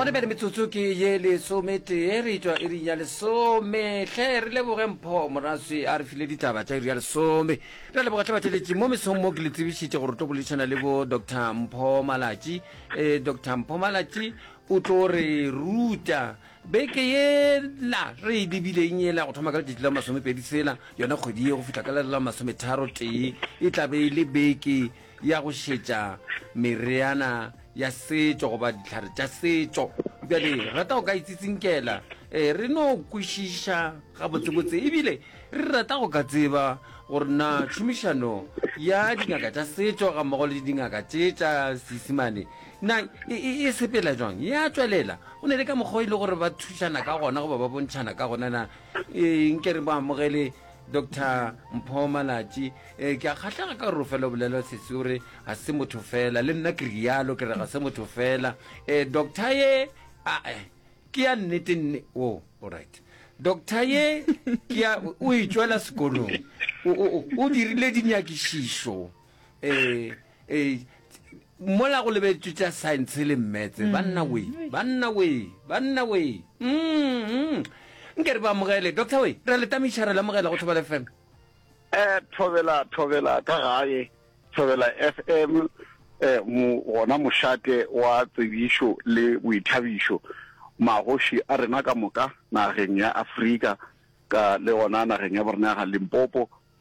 gone bjale metsotso ke ye lesometee re etšwa e ring ya lesome tlhe re leboge mpho moraswi a re file ditaba tša iri ya lesome re a leboga tlhe batšweletši mo mesong mo ke le tsebišitše gore tlo boledišana le bo dr mpho malatši um eh, dr mpho malatši o tlo re ruta beke yela re e lebileng yela go thoma ka letšatši la masomepedi tsela yona kgwedi ye go fitlha ka lere la masometharo tee e tla be e le beke ya go šetša mereana ya setšo goba ditlhare tša setšo bjale rata go ka itsitsinkela e re no kwešiša gabotsebotse ebile re rata go ka tseba gore na tšhomišano ya dingaka tša setšo ga mmogo le dingaka tše tša seisimane Na e, e, e sepela jwang? Ya tswelela. Go ne le ka mokgwa e le gore ba thušana ka gona goba ba bontšhana ka gona na e, nke re ba amogele dr mpho malatši e, ke a kgatlhega ka gore o fela o bolela sesi o re ga se motho fela le nna ke rialo ke re ga se motho fela e, doctor ye a e, ke ya nnete nne o oh, alright doctor ye ke ya o e tswela sekolong o, o, o, o dirile dinyakišišo um e, e, Mola go lebetšwe tša science le mmetse. Banna wee, banna wee, banna wee. Umm, nke re ba amogele. Doctor wee, ra le tamiša, ra le amogela go Thobela FM. Eh, Thobela, Thobela ka gae, Thobela FM, eh, mo, gona mošate wa tsebišo le boithabišo. Magoši a rena ka moka, nageng ya Afrika, ka le gona nageng ya borena ya ga Limpopo,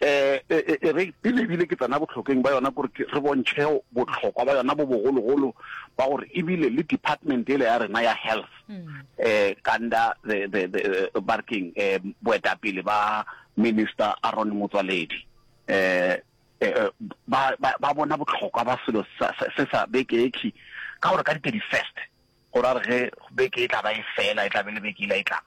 Eh, e, e, e re pele ebile ke tsena botlhokeng ba yona gore re bontšhe botlhokwa ba yona bo bogologolo ba gore ebile le department ele ya rena ya health um kanda the the the eh, ba re keng um boetapele ba minister aron motswaledi um ba bona botlhokwa ba selo se sa bekeekhi ka gore ka di-thirty first go ra re ge beke e tla ba e fela e tla be le beke e la e tlang